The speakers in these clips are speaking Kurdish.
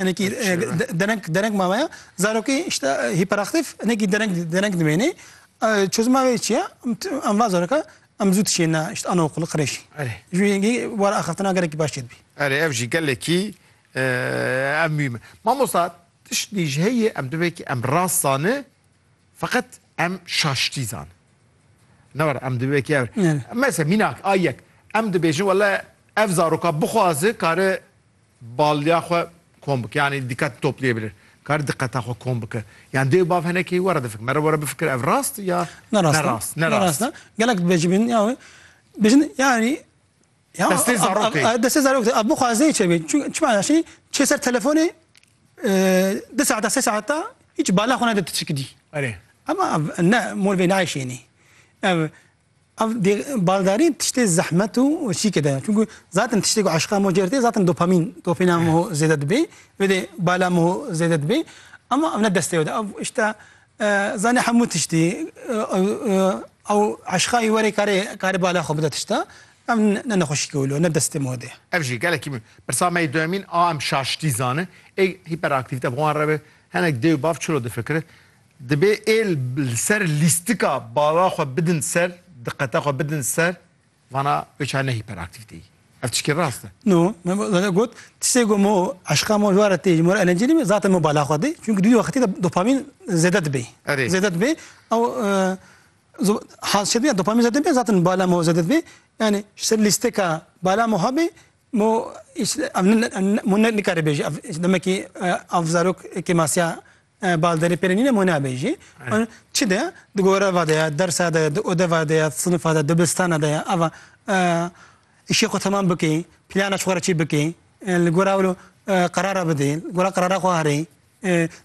Hinekî dereng dereng mame ya. Zarokê işte hiperaktif hinekî dereng dereng dimênê. Çözüma wê çi ye? Em va zaroka em zû tişêne işte anaokulu qirêşî. Erê. Ji yengî wara axaftina gerekî baş çêdibî. Erê ev jî gelekî ev mîme. Mamosta tiştî ji heyê em divê ki em rast zani feqet em şaştî zani. Ne were em divê ki ev. Mesela mînak a yek em dibêjin wele ev zaroka bixwazi kare Baliya xwe kom bike yanî dîqet toplîye bîrê kar diqeta xwe kom bike yan dê û bav hene keyî were difikir mere were bifikir ev rast ya ne rast nerast nerast gelek dibêjî bin ya wê bijin yanî ya destê zarokê destê zarokê ev bixwaze çê bê çi çi mana şî çê ser telefonê di saeta sê saeta hiç bala xwe nede tu çikidî erê ema ne mol vê nayşênî ev Ev baldarî tiştê zehmet û şîkê de ye. Çunku zaten tiştê ku eşqa mo cêr tê zaten dopamîn, dopîna mo zêde dibê. Wê dê bala mo zêde dibê. Ama ev ne destê ew de. Ev işte zanê hemû tiştî ew eşqayî werê karê karê bala xwe bide tişta. Ev ne nexweşîkê wilo, ne destê mo de ye. Ev jî gelekî min. Pirsa me yê duyemîn a em şaştî zanin. Ê hiperaktivîte bi wan re be. Hinek dê û bav çilo difikirin? Dibê êl li ser lîstika bala xwe bidin ser, diqete xwe bidin ser, vana wê çar ne hîperaktîvteyî. Ev tişkî rast e? No, me zade got, tiştê ku mo eşqa mo ji were tê ji mo re elencî nîme zaten mo bala xwe dê. Çunku di wî wextî de dopamîn zêde dibê. Erê. Zêde dibê. Ew hal çêdibê ya dopamîn zêde dibê zaten bala mo zêde dibê. Yanî ji ser lîsteka bala mo hebê mo mo ne nikare bêje ev demekî ev zarok kêmasiya Balderî pêrê nîne mû nabe jî. Çi de di goreva de ye, dersa de ye, di odeva de ye, sinifa de, dibistana de ye ava îşê xwe temam bikê, plana ji xwe re çê bikê, li gora wilo qerara bidê, li gora qerara xwe herê,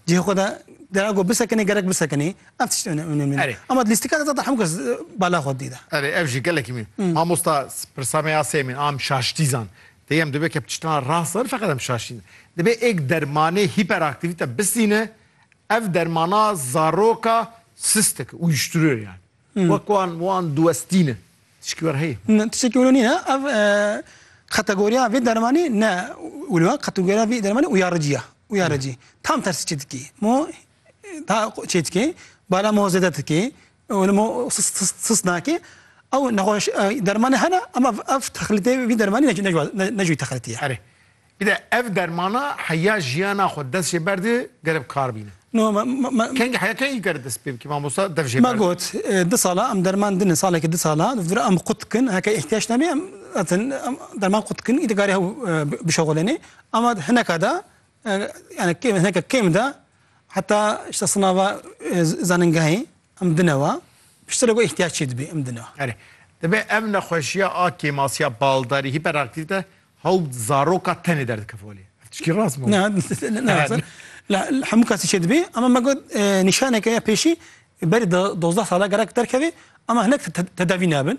cihê xwe de dera ku bisekinê gerek bisekinê. Ev tişt onemlî ne. Ama di lîstika de zata hemû kes bala xwe didî de. Erê ev jî gelekî mî. Mamosta pirsa me ya sêmîn a em şaştî zan. Tê em dibe ke tiştan rast nebin feqet em şaşîn. Dibe êk dermanê hîperaktîvîte bisîne, ev dermana zaroka sist dike, uyuşturuyor yani. Wek wan wan diwestîne. Tişkî were heye? Ne, tişekî were nîne. Ev kategoriya vê dermanî ne wilo, kategoriya vê dermanî uyarıcı ya. Uyarıcı. Tam tersi çê dikê. Mo daha çê dikê, bala mo zêde dikê, Ew li min sist nake. Ew nexweş dermanê hene ama ev texlitê vî dermanî ne ji wî texlitî ye. Erê. Bi de ev dermana heya jiyana xwe dest jê berde gere bi kar bîne. No me. Kengî heya kengî kare dest pê bike mamosta dev jê berde. Me got du sala em derman dine saleke du sala di vir em qut dikin heke îhtiyac nebe em atin em derman qut dikin îdî karê hew bişexilenê ama hineka de yani kêm hineka kêm de Heta işte sınava e, zaningehê em dinewa piştire ku ihtiyaç çê dibê em dinewa. Erê. Dibê ev nexweşiya a kêmasiya baldarî hiperaktivite hewt zaroka tenê derdikefolê. Tişkî rast mı? Ne, ne, ne. La hemû kesî çê dibê ama me got e, nîşaneke ya pêşî berî 12 sala gerek derkevê ama hinek tedavî nabin.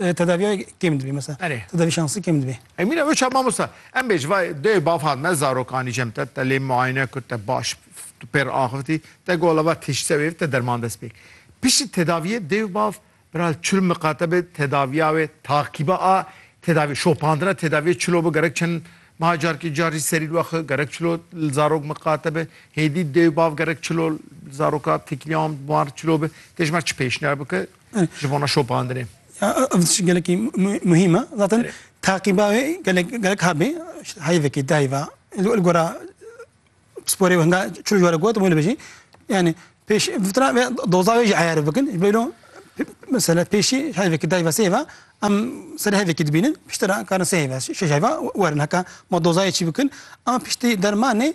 Tedaviya kêm dibê mesela. Erê. Tedavi şansı kêm dibê. E mîna wê şa mamosta. Em bêj va dê baf hat me zarokanî jem te te lê muayene kut te baş tu pêr axivitî te gola va tiştse wê te derman dest pêk. Piştî tedaviyê dêv bav biral çil miqate bi tedaviya wê takîba a tedavi şopandina tedaviyê çilo bi gerek çend ma carkî car jî serî wexe gerek çilo li zarok miqate bi hêdî dêv bav gerek çilo zaroka tekîliya wan çilo bi têjmer çi pêşniyar bike ji bona şopandinê. Ev tişt gelekî muhîm e. Zaten taqîba wê gelek gelek habê heyvekî di heyva li gora sporê hinga çil jwara got wê bêjî yani pêş vitra ve doza wê jî eyar bikin ji bêlo mesela pêşî heyvekî di heyva sê heyva em serê heyvekî dibînin piştre karin sê heyva şeş heyva werin heka ma dozayê çî bikin ama piştî dermanê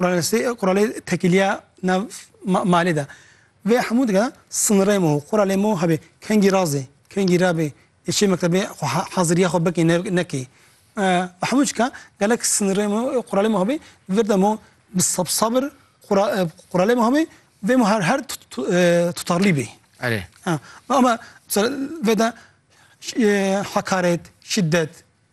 Quralê tekîliya nav malê de vê hemû dike sinirê mo quralê mo hebê kengî razê kengî rabê çê mektebê xwe heziriya xwe bikê nekê bi hemû çika gelek sinirê mo quralê mo hebê vir de mo bi sabir quralê mo hebê vê mo her tutarlî bê erê ama vê de hekaret şiddet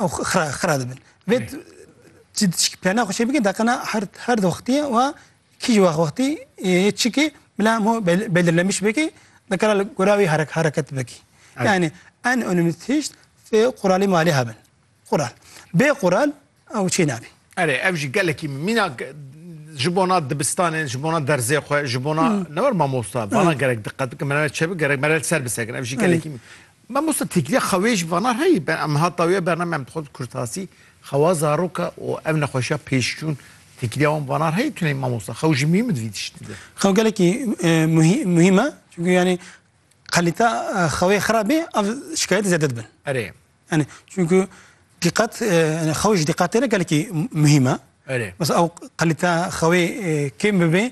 Ew xira xira dibin. Vê çi çi plana xwe çê bike deqina her her wextî wa kîjî wex wextî yê çikî bila hemû bel- belirlenmiş bikî dikara li gora wî here- hereket bikî. Evet. Yani en önemli tişt fê quralî malê hebin. Qural. Bê qural ew çê nabî. Erê ev jî gelekî mînak e, ji bona dibistanê, ji bona derzê xwe, ji bona ne wir mamosta, vana gerek diqet bikin, me ne çê bikin, gerek me re li ser bisekin. Ev jî gelekî Mamosta Têkilî xewê ji vana re yî, em hata wê bername em dixwazin kurtasî xewa zaroka û ev nexweşiya pêşçûn têkilîya wan vana re yî tune yî mamosta. Xew ji mîm di vî tiştî de. Xew gelekî muhîm e çunku yanî qelîte xewê xirab bê ev şikayetê zêde dibin. Erê. Yanî çunku dîqet yanî xew ji dîqet tê re gelekî muhîm e. Erê. Mesela ew qelîte xewê kêm bibê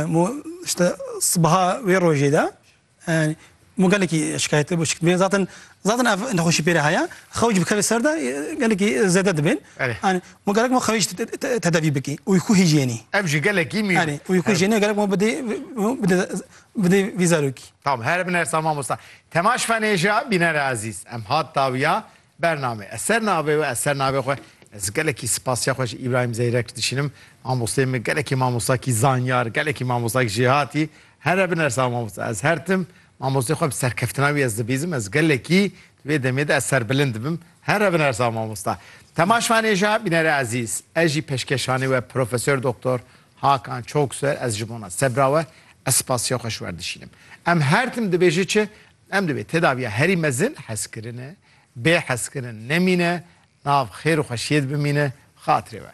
mu işte sibaha wê rojê de Mû gelekî şikayetê bû şikdibê. Zaten zaten ev nexweşî pêre heye. Xewc bikeve ser de gelekî zêde dibên. Anî mû gerek ma xewc tedavî bikî. Uykû hijyenî. Ev jî gelekî mî. Anî uykû hijyenî gerek ma bidê bidê bidê vî zarokî. Tam here bin ersa mamosta. Temaş fenêja bînere ezîz. Em hat dawiya Bername ez ser navê we ez ser navê xwe ez gelekî spasiya xwe ji Îbrahîm Zeyrek dişînim mamosteyê min gelekî mamostakî zanyar gelekî mamostakî jêhatî here binersa mamosta ez her tim mamosteyê xwe bi serkeftina wî ez dibîzim ez gelekî di vê demê de ez serbilind dibim here binersa mamosta Tema Şvanêja bînere ezîz ez jî peşkeşanê we Profesor Doktor Hakan Çokswer ez ji bona sebra we ez spasiya xwe ji wer dişînim em her tim dibêje çi Em divê tedaviya herî mezin hezkirine, bê hezkirin nemîne, nav xêr û xweşiyê de bimîne xatirê we.